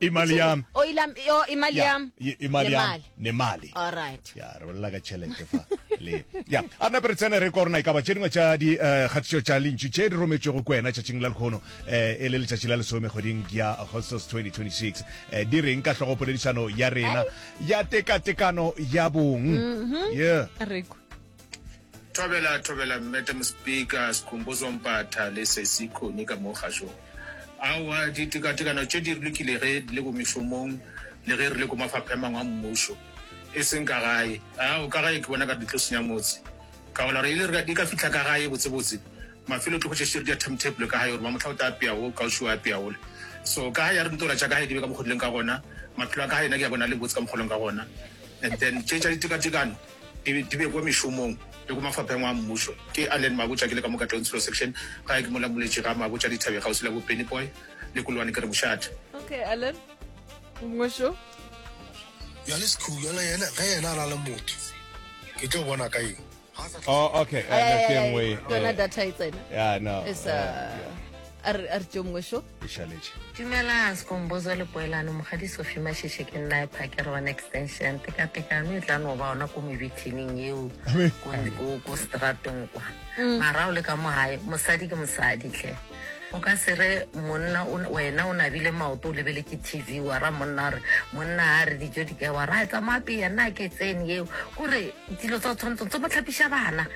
imali yami o ilam yo imali Ya, yam i- imali yami nemali all right ya re bolela ka tšhelete fa le ya a re nape re tsene re korona e kaba tše dingwe tša di eh, kgatišo tša lentšu tše di rometšwego ko wena tšatšing la lekgono eh, e le letšatši la lesome kgweding ya augustus 2026 Eh, di reng ka hlogo poledišano ya rena ya tekatekano ya bong yeah. Re kwe. Thobela, thobela Mmete Mospika Sikhumbuzo Mpatha le Sesi Khoni ka mo kgašong. Aowa, ditekatekano tše di lokile ge di le ko mešomong le ge re le ko mafapha a mangwe a mmušo, e seng ka gae. Ao, ka gae ke bona ka di tlo senya motse. Ka gola gore e le re di ka fihla ka gae botsebotse, mafelo tlo hwetša šere di a timetable ka gae gore ba mohla o tla apea wo, kaošio a apea wole. So ka gae ya re ntola tša ka gae di be ka mokgo di leng ka gona, maphelo a ka gae nna ke a bona a le botse ka mokgo a leng ka gona. And then tše tša ditekatekano, Di be, di be kua mešomong le kua mafapheng a mmušo. Ke Allen Mabotja, ke le ka mo Katlonsilo Section. Gae ke mola Moletši ga Mabotja Dithabeng kgauswi le bo Penny Boy le Kulwane ke re mošate. Okay Allen, mmušo. Bjale Sekhuhu bjale yena, ge yena a na le motho, ke tlo bona ka eng? Oh okay, Ay, ay, ay, ay, ke engwe e. Yona data e tsena. Yeah, no. It's a, a re, a re tšeo mmušo. e šaletše. Dumelang Skombozo le Poelano, Mokgadi Sophie Mashishe ke nna Phakere wa Extension. Tekatekano e tla no ba ona ko mebithining eo ko ko stratong kwa. Mm. Mara o le ka mogae, mosadi ke mosadi tle. O ka se re monna wena o nabile maoto o lebele ke TV wa ra monna re monna a re dijo di ka wa ra tsamaya pele nna ke tsene eo kore Dilo tsa o tshwanetse tse mo tlhapiša bana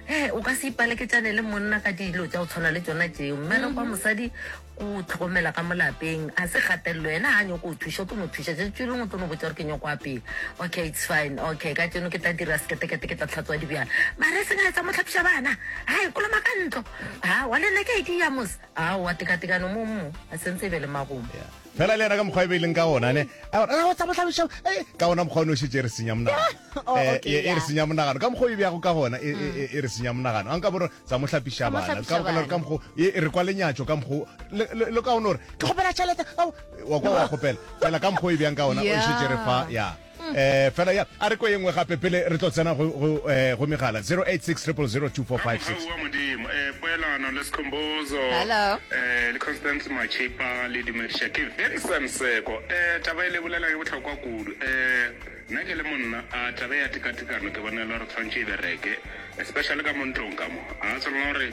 ee o ka se ipaleketšane le monna ka dilo tša o tshwana le tsona tšeo mmere kwa mhm. mosadi o tlhokomela ka molapeng a se gatelelo yena ga nyoko o thuša o tlo no thuša jetso lengwe o tlo no botsa gore ke nyoko a pele okay it's fine okay ka tseno ke tla dira seketekete ke tla tlhatswa dibjana mare e seng a etsa mo tlhapiša bana ga e koloma ka ntlo a wa le nna ke a idiya mos a wa tekatekano mo mo a sentse e be le magomo Fela le yena ka mokgwa e be e leng ka ona, ne, a re, Ra wetsa bohlabišo, e, ka ona mokgwa o ne o šetše e re senya monagano. Oh, Eh, okay, e, e re yeah. senya monagano. Ka mokgwa o e bjago ka gona, e, e, e, e re senya monagano. A nka bo re, tsa mo hlapiša Tsa mo bana. hlapiša Ka, ka, bana. ka mokgwa, o- e, e re kwa lenyatšo ka mokgwa, o- le, le, le ka ona gore, ke kgopela tšhelete, ao. wa kwa wa kgopela. Fela ka mokgwa o e bjang ka ona, o e šetše e re fa, Yeah. ya. Eh, fela ya a re ko engwe gape pele re tlo tsena go go eh, go megala 086 000 2456 Aowa modimo eh, poelano le sekhombozo Hello. eh, le constance machipa le dumediša ke vincent seko eh, taba e le bolela ke bohlokwa kudu eh, nna ke le monna a taba ya tekatekano ke bona e le gore tshwantšhe e bereke especially ka mo ntlong ka mo a tshwanela gore